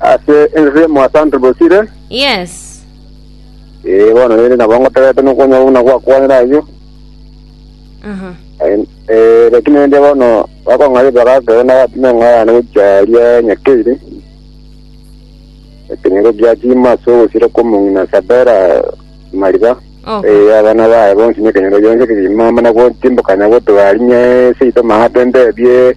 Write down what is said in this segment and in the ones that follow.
Ase ense emo ase Andrew Bosire. Yes. Eh bono rende nabo ngotegete nokonya buna gwakwanire ayio. Aha. Eh lakini rende bono bakong'aria bagaka na batime ng'aya na gocharia nyakeire. Lakini go giachima so gosira komong'ina sabera mariba. Okay. Eh abana bae bonsi ne kenyoro yonse kiri mama na gotimbuka na gotuarinye seito mahatembe bie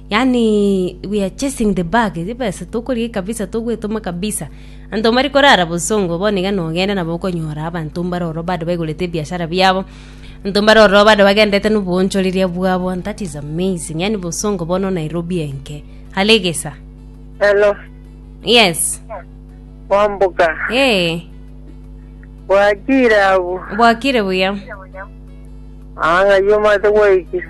Yaani we are chasing the bag, chibesa tokorigia kabisa togwetoma kabisa. Anto mbari korara bosongo bono iga nogenda nabo okonyora abanto mbare ororo bado baigorete ebiashara biabo. Anto mbare ororo bado bagenderete noboonchoreria bwabo and that is amazing. Yaani bosongo bono Nairobi enke. Hale egesa. Hello, Yes. Wambuga. Eh, Bwakire abu. bwakire buya. Anga yomate gwaikire.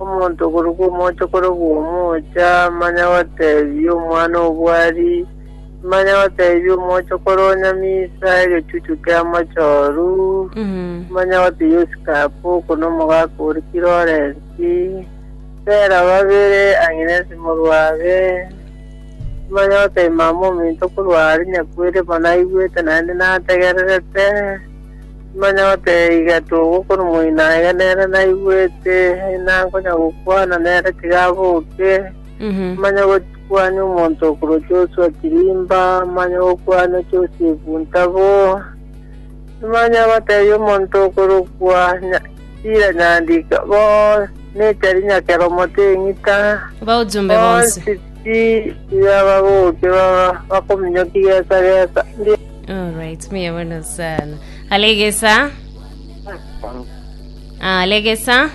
Omonto okoruka omoocha korokwa omoocha, manya gotebia omwana obwari, manya gotebia omoocha kore onyamisa egechuchu ki'amochoru, manya gotebia osikape oko nomogaka ore kirorensi, bera babere ang'e nesimorwabe, manya gotebia mama ominto korwa are nyakweri bono aigwete naende nategererete. Manya gotebia iga togokora omoino aye nere naigwete, na nkonya gokwana nere tiga aboke. Manya gokwania omonto okorwa Joshua Kirimba, manya gokwania Joseph Ntabo. Manya gotebia omonto okorokwa Nya- Sira Nyandika, bo Nateri Nyakeromo Teng'ita, Baojumbe bonsi. bonsi ti- tiga baboke baba bakominyokia gesa gesa. Ndi- Alright, mbuya mono sana. Alegesa. Alegesa.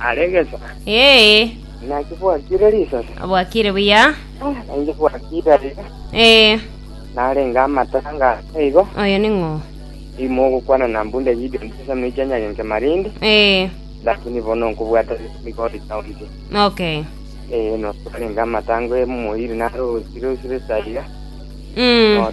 aregesa Yee. naki bwakire risasi Bwakire buya. nainche bwakire aiga Eh, narenga amatara ngasa igo oyo ning'o. imo ogokwana na mbunde video ntesa noicha nyagenke marindi Eh, lakini bono nkobwata migori county okay. eh no twarenga amatango emoiri narosire osire saiga Mm.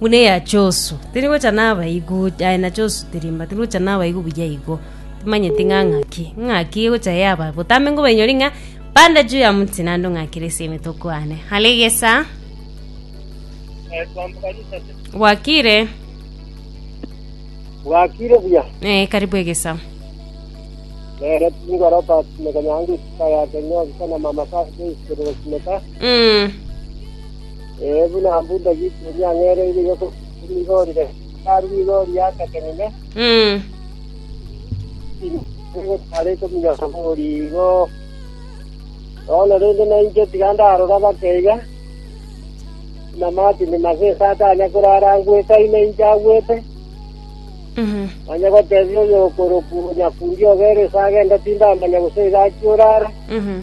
Buna eya Josu, tiri gocha nabaigwe ocha, aye na Josu tiri mba, tiri gocha nabaigwe buya igo. Timanyeti ng'a ng'aki, ng'aki egocha yaba, botambe nkobainyoria ng'a bande juu ya moti naende ong'akere ase emeto okwane. Are egesa, bwakire, Bwakire buya. eh, karibu egesa. Nere tingoro tasimeka nyange isika yake nyoka na mama kase ikerero simeka. Mm. Ee, buna abwo Daudi oria ang'ereire iga korwa rigori rende, hekalu nigo riategenine, Mm. egotara ekomigana bori igo. Bono rende nainche tiga ndarora bake iga, buna Martin Masesa atanya korara angwete aino inche agwete, Mhm. manya gotebia oyokorokwa Nyakundi obereso agende tindamanya gose iga achia orara. Mhm.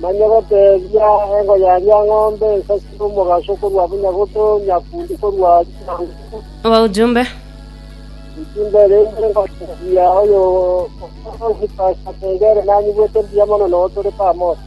Manya goteebia engo ya riang'ombe ensasi y'omogaso korwa Bunyagoto, Nyakundi korwa Chiangugu. Abaujumbe. Ojumbe rende ngoteebia oyo okorokigwa Sasengere nanyigwete mbuya mono, nao tore pamoja.